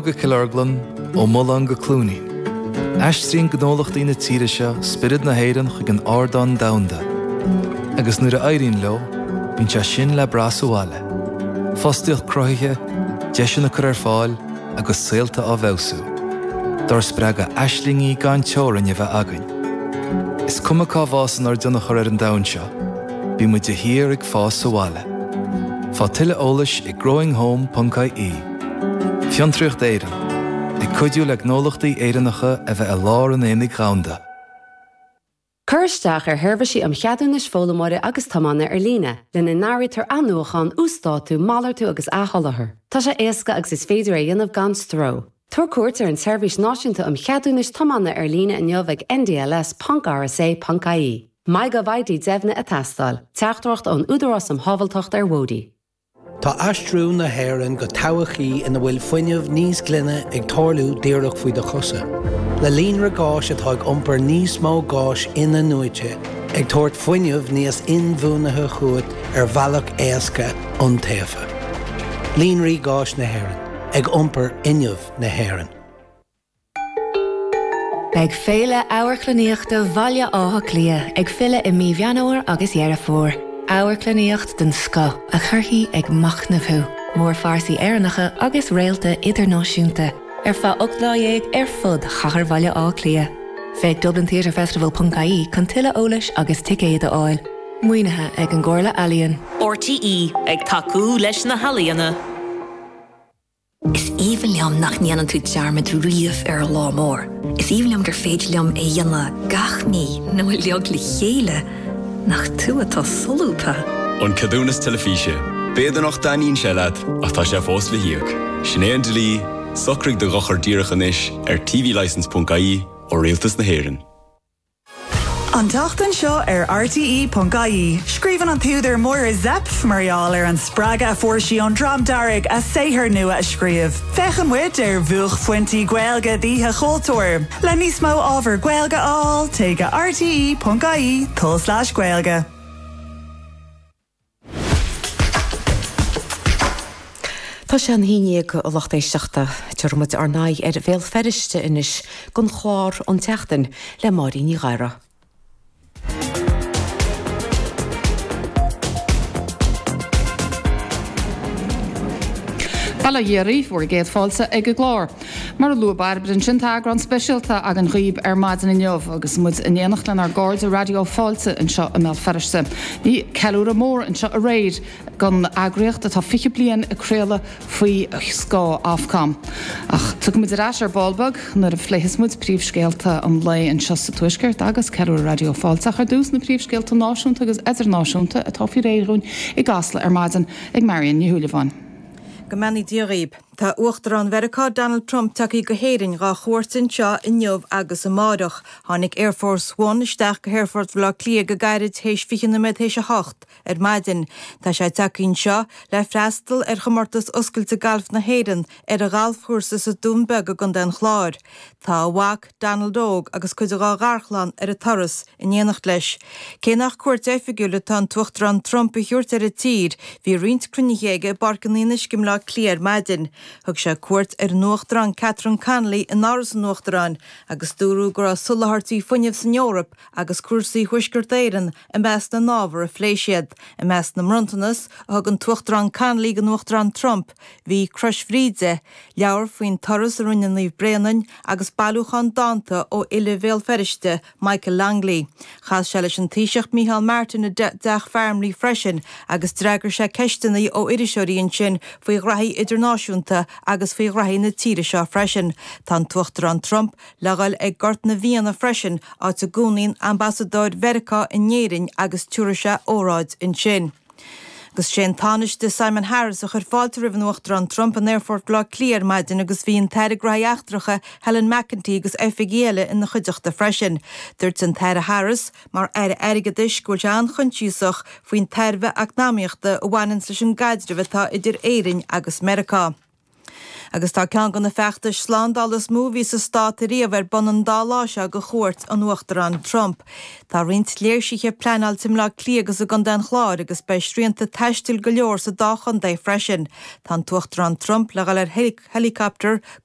go Cill Orglan, ó Mhullán go Cluainín, aistríonn gnólachtaí na tíre seo spiorad na hÉireann chuig an ardán domhanda, agus nuair a éiríonn leo, bíonn sé sin le brath sa bhaile, fostaíocht cruthaithe, deiseanna á gcur ar fáil agus saolta á bhfeabhsú, dár spreagadh aislingí gan teorainn a bheith againn. Is cuma cá bhfásann ár dtionchar ar an domhan seo, bíonn muid de shíor ag fás sa bhaile. Faigh tuilleadh eolais ag growinghome.ie. Fiontraíocht Éireann, ag cuidiú le gnólachtaí Éireannacha a bheith i lár an aonaigh dhomhanda. Cuir isteach ar sheirbhísí um cheadúnais foghlaimeora agus tiomána ar líne, lena n-áirítear athnuachán, uasdátú, malartú agus athsholáthar. Tá sé éasca agus is féidir é a dhéanamh gan stró. Tabhair cuairt ar an tSeirbhís Náisiúnta um Cheadúnais Tiomána ar líne inniu ag ndls ponc rsa ponc ie. MyGovID Deimhnithe ag teastáil, Teachtaireacht ón Údarás um Shábháilteacht ar Bhóithre. Tá aistriú na hÉireann go todhchaí ina bhfuil fuinneamh níos glaine ag tarlú díreach faoi do chosa. Le líonra gáis atá ag iompar níos mó gáis inathnuaite, ag tabhairt fuinneamh níos inbhuanaithe chugat ar bhealach éasca, iontaofa. Líonraí Gáis na hÉireann, ag iompar fhuinneamh na hÉireann. Beidh Féile Amharclannaíochta Bhaile Átha Cliath ag filleadh i mí Mheán Fhómhair agus Dheireadh Fómhair. Amharclannaíocht den scoth a chuirfidh ag machnamh thú, mórphearsaí Éireannacha agus réalta idirnáisiúnta, ar feadh ocht lá dhéag ar fud chathair Bhaile Átha Cliath. Féach dublintheatrefestival.ie chun tuilleadh eolais agus ticéid a fháil. Maoinithe ag an gComhairle Ealaíon. RTÉ ag tacú leis na healaíona. Is aoibhinn liom nach ndéanann tú dearmad riamh ar lá mór. Is aoibhinn liom gur féidir liom é dhéanamh gach mí nó uiliog le chéile, nach tú atá solúbtha! An Ceadúnas Teilifíse, B'fhéidir nach dtaitníonn sé leat, ach tá sé fós le híoc. Sin é an dlí, socraigh do dhochar díreach anois ar tvlicence.ie ó Rialtas na hÉireann. An tseachtain seo ar RTÉ.ie, scríobhann an t-údar Máire Zepf mar gheall ar an spreagadh a fuair sí ón Dream Dearg a saothar nua a scríobh. Féachann muid ar bhuaicphointí Gaeilge d'Oíche Chultúir. Le níos mó ábhar Gaeilge a fháil, téigh go rte.ie/gaeilge. Tá sé an haon dhéag, a lucht éisteachta. Tabharfaidh muid ár n-aghaidh ar Bhéal Feirste anois don chlár An tSeachtain le Máirín Ní Ghadhra. Bail ó Dhia oraibh is bhur gcéad fáilte ag an gclár. Mar a luaigh Bairbre ansin, tá eagrán speisialta againn dhaoibh ar maidin inniu agus muid in éineacht lenár gcairde Raidió Fáilte anseo i mBéal Feirste. Bhí ceiliúradh mór anseo aréir don eagraíocht atá 20 bliain ag craoladh faoi scáth Ofcom. Ach tiocfaidh muid ar ais ar ball beag nuair a phléifeas muid príomhscéalta an lae anseo sa Tuaisceart agus ceiliúradh Raidió Fáilte ach ar dtús na príomhscéalta náisiúnta agus idirnáisiúnta atá faoi réir dhúinn i gCasla ar maidin ag Marion Ní Shúilleabháin. Go mbeannaí Dia dhaoibh. Tá Uachtarán Mheiriceá Donald Trump tagthaí go hÉirinn dhá chuairt anseo inniu agus amáireach. Tháinig Air Force One isteach go hAerfort Bhaile Átha Cliath go gairid théis 20 nóiméad théis a hocht ar maidin. Tá sé tagthaí anseo le freastal ar Chomortas Oscailte Gailf na hÉireann ar a ghalfchúrsa sa Dún Beag i gContae an Chláir. Tá a mhac. Donald Óg agus cuid dhá gharchlann ar an turas in éineacht leis. Cé nach cuairt oifigiúil atá an tUachtarán Trump a thabhairt ar an tír, bhí roinnt cruinnithe aige i bPáirc an Fhionnuisce i mBleá Cliath ar maidin. Thug sé cuairt ar an Uachtarán Catherine Connolly in Áras an Uachtaráin agus dúradh go raibh soláthairtí fuinnimh san Eoraip agus cúrsaí Thuaisceart Éireann i measc na n-ábhar a phlé siad. I measc na mbronntanas a thug an tUachtarán Connolly don Uachtarán Trump, Bhí Crois Bhríde, leabhar faoin turas a rinne Naomh Bréanainn agus bailiúchán dánta ó fhile Bhéal Feirste, Michael Longley. Chas sé leis an Taoiseach Micheál Martin i dTeach Farmleigh freisin agus d'fhreagair sé ceisteanna ó iriseoirí ansin faoi ghraithí idirnáisiúnta agus faoi ghraithí na tíre seo freisin. Tá an tUachtarán Trump le dhul ag Gort na bhFianna freisin, áit a gcónaíonn Ambasadóir Mheiriceá in Éirinn agus tiúrfaidh sé óráid ansin. Agus sé an Tánaiste Simon Harris a chuir fáilte roimh an Uachtarán Trump in Aerfort Bhleá Cliath ar maidin agus bhí an tAire Grai Eachtracha Helen McEntee agus oifigigh eile ina chuideachta freisin. Dúirt an tAire Harris, mar Aire Airgeadais, go bhfuil sé an-choinsiasach faoin tairbhe eacnamaíochta a bhaineanns leis an gcaidreamh atá idir Éirinn agus Meiriceá. Agus tá ceann de na feachtais slándála is mó a bhí sa stát ariamh ar bun an dá lá seo ag chuairt an Uachtaráin Trump. Tá roinnt léirsithe pleanáilte i mBleá Cliath agus i gContae an Chláir agus beidh srianta taistil go leor sa dá chontae freisin. Tá an tUachtarán Trump le dhul ar héileacaptar go